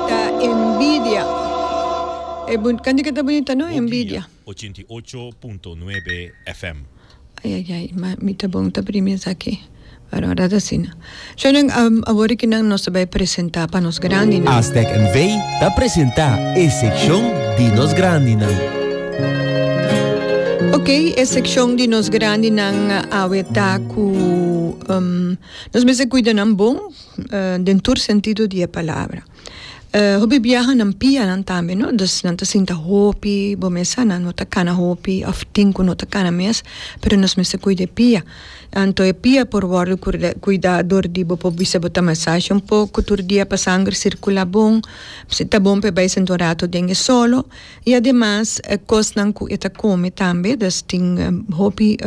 Ta envidia. E bun Canti que ta bonita no? Envidia. Ay ay ay ma mi ta bon ta primi esaki pero ora ta asina Shownan awor aki nan nos ta bay presenta pa nos grandinan. Aztec NV ta presenta e seccion di nos grandinan. Ok e seccion di nos grandinan awe ta cu nos mester cuida nan bon. den tur sentido di e palabra. Hopi biaha nan pia nan tambe no dus nan ta sinta hopi bo mesa nan no ta cana hopi of tin cu no ta cana mes pero nos mester cuida e pia anto e pia por wordo cur- cuida dor di bo por bisa bo ta masaje un poco tur dia pa sanger circula bon si ta bon pa e bay sinta un rato den e solo y ademas e cosnan cu e ta come tambe dus tin hopi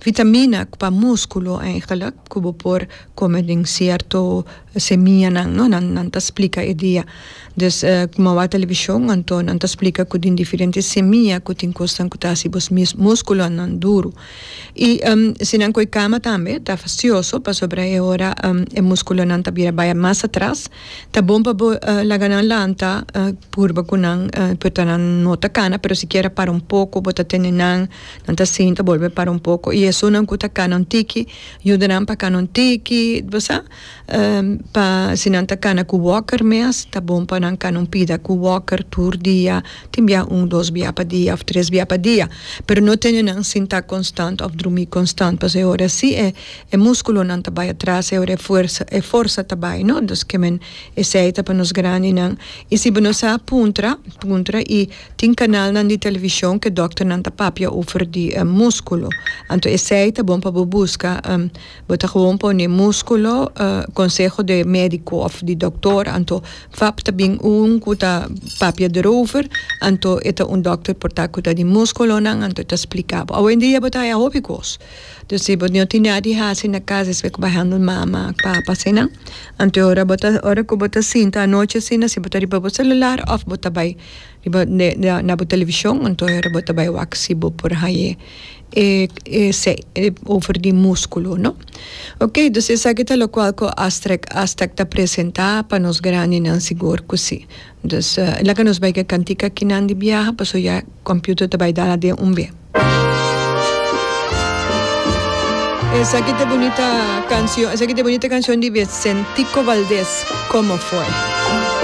vitamina pa musculo eigenlijk. Ku bo por kome den sierto semianan, no? Nan nan ta splika e dia. Dus ku mawá televishon, anto nan ta splika ku den diferente semia ku tin kosnan ku ta hasi bos mes muskulonan duru. I si nan koi kama tambe ta fastioso pasobra e ora e muskulonan ta bira bai mas atras, ta bon pa bo laga nan lanta purba ku nan puta nan no ta kana, pero sikiera para un poko bo ta tene nan. Nan ta sinta bolbe para un poko y esunnan cu ta cana un tiki yuda nan pa cana un tiki bo sa pa si nan ta cana cu walker mes ta bon pa nan cana un pida cu walker tur dia tin bia un dos bia pa dia of tres bia pa dia pero no tene nan sinta constant of drumi constant pasobra e ora si e e musculonan ta bay atras e ora e fuerza e forza ta bay no entonces kimen esey ta pa nos grandinan y si bo no sa puntra puntra y Tin kanalnan di television ku e dòkternan ta papia over di múskulo. Anto esei ta bon pa bo buska. Bo ta gewoon pone múskulo, konseho di e médiko òf di doktor. Anto vap ta bin un ku ta papia derover. Anto e ta un dòkter por ta ku ta di múskulonan. Anto e ta splika bo. Awendia bo ta haya hopi kos. Dor si bo no tin nada di hasi na kas esei ku bai handel mama, papa asina. Anto e ora bo ta, ora ku bo ta sinta anochi asina si bo ta riba bo selular òf bo ta bai. Riba na bo televishon anto hora bo ta bai wak si bo por hañ'e e e se e over di muskulo no ok dus esaki ta lokual ku astrek Aztec ta presentá pa nos grandinan sigur ku si dus laga nos bai ke kantika kinan di biaha paso ya computer ta bai dala den un be. Esaki ta bunita cancio esaki ta bunita cancion di Vicentico Valdez Como fue.